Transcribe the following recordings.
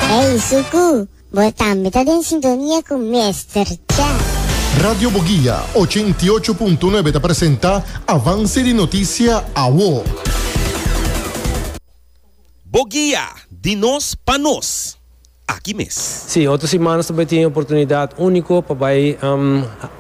Hey Suku, bo tambe ta den sintonia cu Mester Cha. Radio Boguia ochenta i ocho punto nuebe ta presenta Avance di noticia awo. Boguia, di nos pa nos. Aki mes. Sí, otro simanas ta bai tin e oportunidad unico pa bai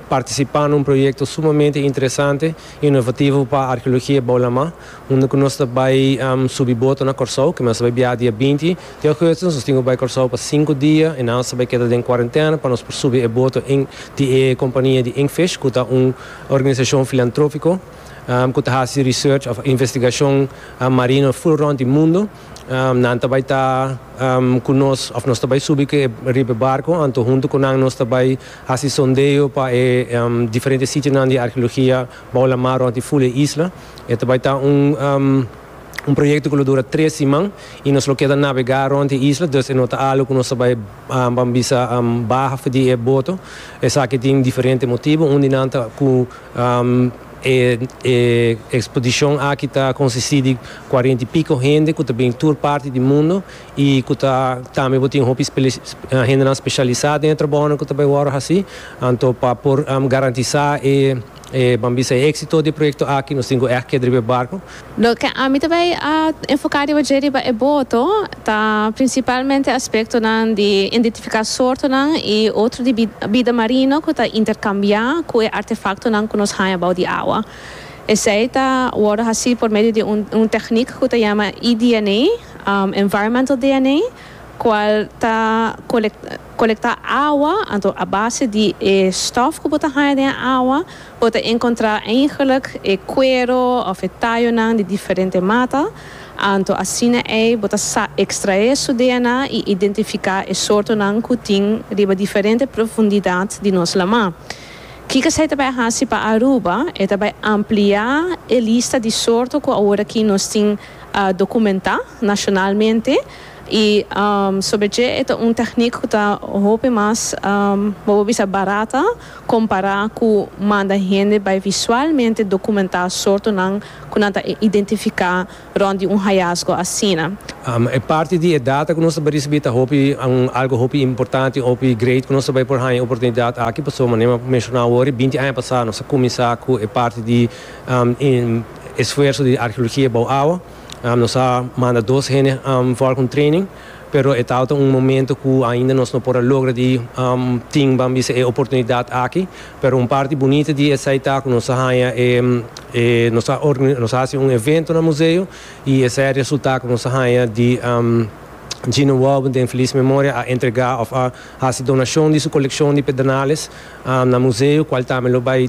participa na un proyecto sumamente interesante y innovativo pa arheologia bou Lamá. Unda ku nos ta bai subi boto na Kòrsou, ke nos ta bai biaha dia binti di ougùstus. Nos tin ku bai Kòrsou pa sinku dia i nan nos ta bai keda den kuarentèna pa nos por subi e boto di e kompania di Inkfish ku ta un organisashon filantrófiko ku ta hasi research òf investigashon marino ful rònt di mundu. Nan ta bai ta ku nos òf nos ta bai subi riba e barko. Anto huntu ku nan nos ta bai hasi sondeo pa e diferente sitionan di arkeologia bou la mar rònt di ful e isla. E ta bai ta un un proyekto ku lo dura tres siman i nos lo keda nabegá rònt e isla, dus e no ta algu ku nos ta bai ban bisa baha for di e boto. Esaki tin diferente motibu. Un di nan ta ku e e ekspodishon aki ta konsistí di kuarenta i piko hende ku ta bini tur parti di mundu i ku ta tambe bo tin hopi hendenan speshalisá den e trabounan ku ta bai wòrdu hasí. Anto pa por garantisá e. E ban bisa e éksito di proyekto aki, nos tin ku èg keda riba e barku. Loke ami ta bai a enfoká riba dje riba e boto ta prinsipalmente aspektonan di indentifiká sortonan i otro di bida marino ku ta interkambiá ku e artefaktonan ku nos haña bou di awa. Esei ta wòrdu hasí por medio di un teknik ku ta yama EDNA, Environmental DNA, kual ta. Kolektá awa, anto a base di e stòf ku bo ta haña den e awa, bo ta enkontrá eigenlik e kuero òf e tayonan di diferente mata, anto asina ei bo ta sa ekstraé su DNA i identifiká e sortonan ku tin riba diferente profundidat di nos lamá. Kiko esei ta bai hasi pa Aruba? E ta bai ampliá e lista di sorto ku aworakí nos tin dokumentá nashonalmente, I sobre dje e ta un teknik ku ta hopi mas, bo por bisa barata, kompará ku manda hende bai visualmente dokumentá sortonan ku nan ta identifiká rònt di un hayasgo asina. E parti di e data ku nos ta bai risibí ta hopi algu hopi importante, hopi great ku nos ta bai por haña e oportunidat aki. Pasobra manera mi a menshona awor, binti aña pasá nos a kuminsá ku e parti di esfuerso di arheologia bou awa. Nos a manda dos hende for con training, pero e tabata un momento cu ainda nos no por a logra di tin ban bisa e oportunidad aki. Pero un parti bunita di esai ta cu nos a haya e nos a nos a haci un evento na museo y esai a resulta cu nos a haya di Gino Walben den feliz memoria a entrega of a haci donacion di su coleccion di pedernales na museo cual tambe lo bay